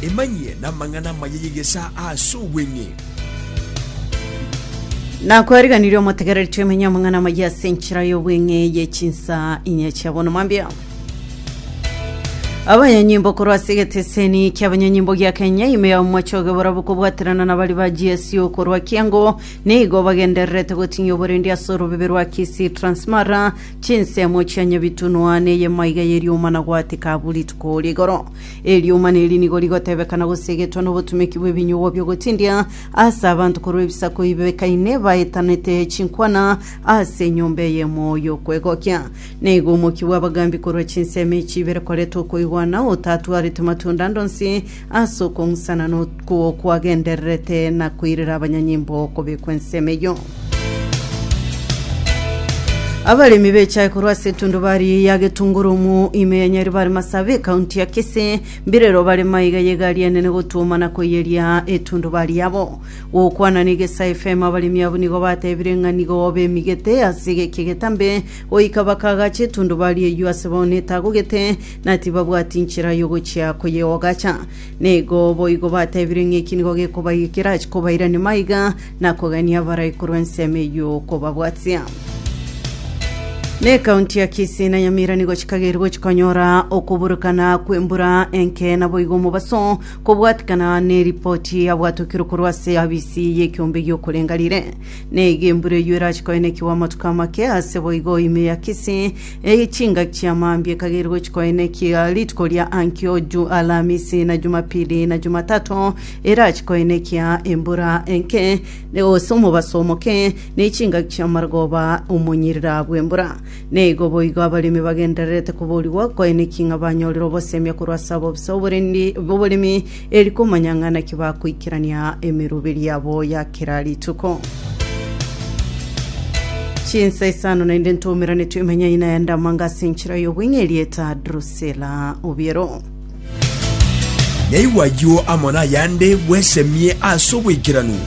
Emanyie namang'ana amaya y'egesaa ase obweng'e. Nakwariganirie omotegereri twemenye amang'ana amaya ase enchera y'obweng'e ye chinsa inye chia bono mwambia abanyanyimbo korwa ase egeteseni ki'abanyanyimbo gia kenya ime ya omochoge borabo kobwaterana na bari ba gsu korwa kiango nigo bagendererete gotinyia oborendi ase orobebe rwa kisii transmara Chinsemo chia nyabitunwa ney'emaiga y'erioma na goatika abwo rituko rigoro. Erioma neri nigo rigotebekana gose egetwa nobotumeki bw'ebinyugwa bi'ogotindia ase abanto korwa ebisaku bibekaine baetanete chinkwana ase enyomba eyemo y'okwegokia. Na igo omokia bw'abagambi korwa chinsemo echi ibere koreta okoigwana otatwarete matunda ande onsi Ase okong'usana n'okwo kwagendererete na koirera abanyanyimbo okobekwa ensemo eyio. Abaremi b'echae korwa ase etundubari ya Getungurumu ime ya Nyaribari Masabi, ekaunti ya Kisii, mbirero barema iga ye egari enene gotuoma na koiyeria etundubari yabo. Gokwana na Igesa FM abaremi abwo nigo batebire ng'a nigo bemigete ase egeki egetambe goika bakaagache etundubari eyio ase bono etagogete na tibabwati inchera y'ogochia koyeogacha. Na igo boigo batebire ng'a eki nigo gekobaikera chikobairania maiga, na kogania abarai korwa ensemo eye y'okobabwatia. Na ekaunti ya Kisii na Nyamira nigo chikageire gochia konyora okoburukana kw'embura enke naboigo omobaso, kobwatikana neripoti yabwatokirwe korwa ase abisi y'ekeombe gi'okorenga rire. Na iga embura eyio erachia koenekigwa amatuko amake ase boigo ime ya Kisii, Eye chingaki chia mambia ekagera gochia koina ekiya rituko ria ankio ju Alamisi na Jumapili na Jumatato erache koina ekiya embura enke ne gose omobaso omoke ne chingaki chia marogoba omonyirira bw'embura. Neigo boigo abaremi bagendererete koborigwa koina eking'a banyorire obosemia korwa ase abobisa oborendi oboremi Eri komanya ng'a naki bakoikerania emeroberi yabo ya kera rituko. Chinsa isano naende ntomerane twemenyai na endamanga ase enchera y'obweng'e erieta Drusila Obiero. Naigwa ayio amo nayande bwesemie ase oboikeranu.